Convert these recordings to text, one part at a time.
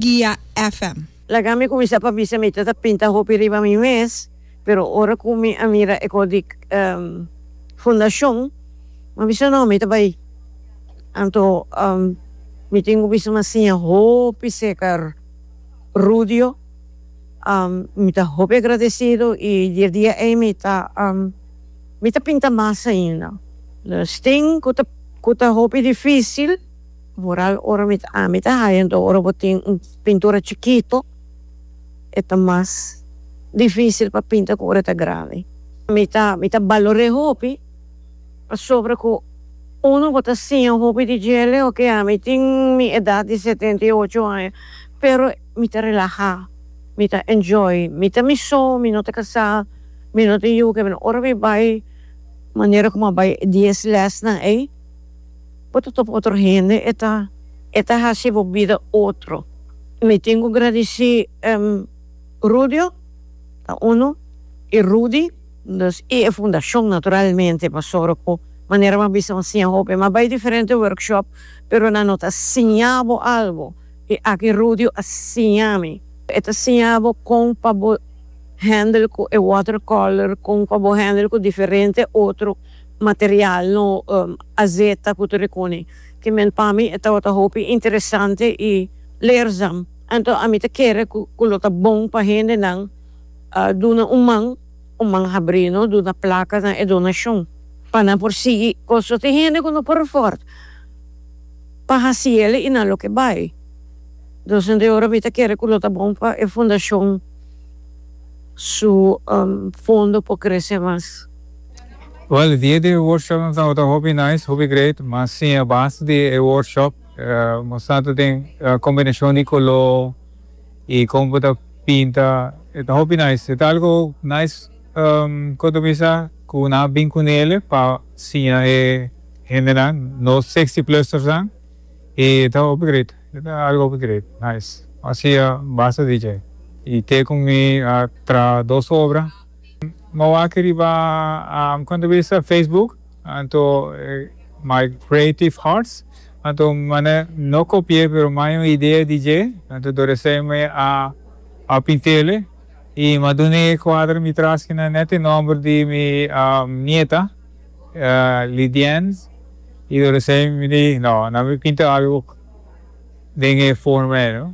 Guia FM. Laga mi kuminsá pa bisa mi ta ta pinta hopi riba mi mes, pero ora ku mi a mira e kos di fundashon mi a bisa no mi ta bai anto mi tin ku bisa mi a siña hopi serka Rudio mi ta hopi agradesido i di e dia ei mi ta mi ta pinta mas ainda stin ku ta ku ta hopi difisil. Mural ora mi ta ami ta haya enton ora bo tin un pintura chikito e ta mas dificil pa pinta cu ora e ta grandi. Mi ta mi ta balor'é hopi pasobra cu uno bo ta siña hopi di djele oke ami tin mi edad di setenta y ocho aña pero mi ta relaha mi ta enjoy mi ta mi so mi no ta casá mi no tin yuke ora mi bay manera como a bay e dies lesnan ey. Bo ta topa otro hende e ta e ta hasi bo bida otro. Mi tin ku gradisí Rudio, ta unu, i Rudy, dus, i e fundashon naturalmente pasobra ku manera bo a bisa bo siña hopi. Mi a bai diferente workshop pero nan no ta siña bo algu, i aki Rudio a siña mi. E ta siña bo kon pa bo handle ku e watercolor, kon pa bo handle ku diferente otro. material no azeta cu ta recune ki men pa mi e tabata hopi interesante y leerzam anto ami ta kere cu lo ta bon pa hendenan duna un man un man habri no duna placa na e donacion pa nan por sigui coso tin hende cu no por afford pa haci yeli y nan lo ke bay dos hende ora mi ta kere cu lo ta bon pa e fundacion su fondo por crece mas. Wel e dia di e workshop nos tabata hopi nice, hopi great, mas sin e base di e workshop, nos sa ta den combinacion di color y como bo ta pinta, e ta hopi nice, e ta algo nice contra mi sa cu nan a bin cu Nele pa siña e hendenan, nos sixty plusers nan, y e ta hopi great, e ta algo hopi great, nice, mas sin e base di dje y te cu mi a traha dos obra. Bo wak riba kon ta bisa facebook anto my creative hearts anto mane no kopi'e pero mai un idea di dje anto do reseme a pintele i ma dun'e kuadra mi tras kina net e nomber di mi nieta Lidiens i do reseme mi di no nan mi pinta algu. den e forma ei.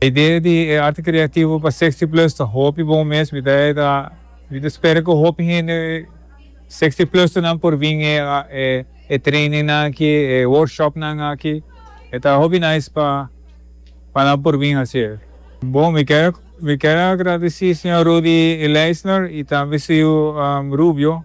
E idea di e arte creativo pa Sixty Plus ta hopi bon mes. Mi ta mi ta spera cu hopi hende Sixty Plusternan por bin e e trainingnan aki, e workshopnan aki. E ta hopi nice pa pa nan por bin haci e. Bon, mi ker mi ker agradeci señor Rudy Leisner y tambe su yiu Rubio.